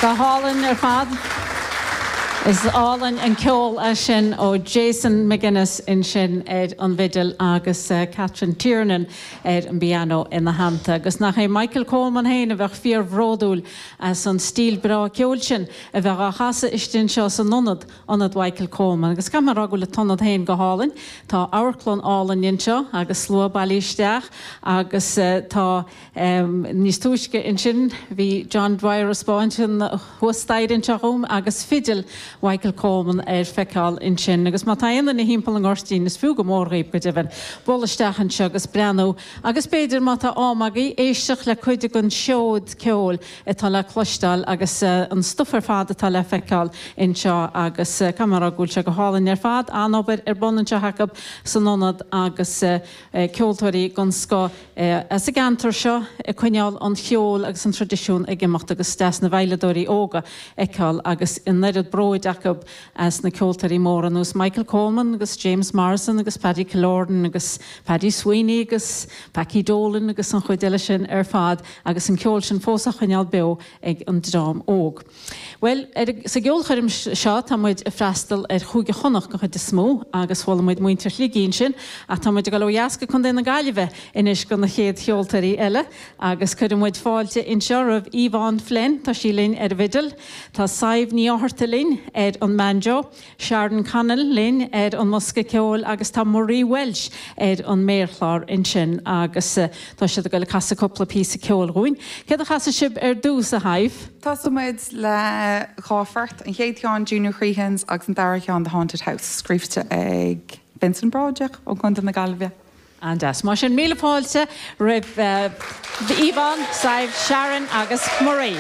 Go hálainn ar fad. Is álainn an ceol é sin ó Jason McGuinness ansin ar an bhfidil agus Catherine Tiernan ar an bpianó ina theannta. Agus nach é Michael Coleman féin a bheadh fíorbhródúil as an stíl breá ceoil sin a bheith á chasadh istigh anseo san ionad, Ionad Mhichael Coleman. Agus caithfidh mé a rá go bhfuil an t-ionad féin go hálainn. Tá amharclann álainn anseo agus slua bailithe isteach agus tá. Níos túisce ansin bhí John Dwyer a spáint an thuas staighre anseo dhom agus fidil Mhichael Coleman ar feiceáil ansin. Agus má tá aon duine timpeall an Ghoirtín is fiú go mór dhaoibh, go deimhin, dul isteach anseo agus breathnú agus b'fhéidir má tá am agaibh éisteacht le cuid den seod ceoil atá le cloisteáil agus an stuif ar fad atá le feiceáil anseo agus caithfidh mé a rá go bhfuil sé go hálainn ar fad. An-obair ar bun anseo acu san ionad agus ceoltóirí den scoth. sa gceantar seo ag coinneáil an cheoil agus an tradisiún ag imeacht agus deas na veidhleadóirí óga fheiceáil agus an oiread bróid acu as na ceoltóirí móra ar nós Michael Coleman agus James Morrison agus Paddy Killoran agus Paddy Sweeney agus Packie Dolan agus an chuid eile sin ar fad agus an ceol sin fós á choinneáil beo ag an dream óg. Bhuel, a, sa gceolchoirm seo tá muid ag freastal ar Chúige Chonnacht den chuid is mó agus chuala muid muintir Shligigh ansin ach tá muid ag dul ó dheas go Contae na Gaillimhe anois do na chéad cheoltóirí eile agus cuireann muid fáilte anseo roimh Yvonne Flynn, tá sí linn ar an bhfidil, tá Sadhbh Ní Fhátharta linn ar an mbanjo. Sharon Connell linn ar an mbosca ceoil agus tá Marie Walsh ar an méarchlár ansin agus tá siad ag goil ag casadh cúpla píosa ceoil dhúinn. Céard a chasfaidh sibh ar dtús, a Shadhbh? Tosóimid le dhá phort, an chéad cheann Junior Crehan's agus an dara cheann The Haunted House, scríbhte ag Vincent Broderick ó Chontae na Gaillimhe. An-deas. Mar sin, míle fáilte roimh Yvonne, Sadhbh, Sharon agus Marie.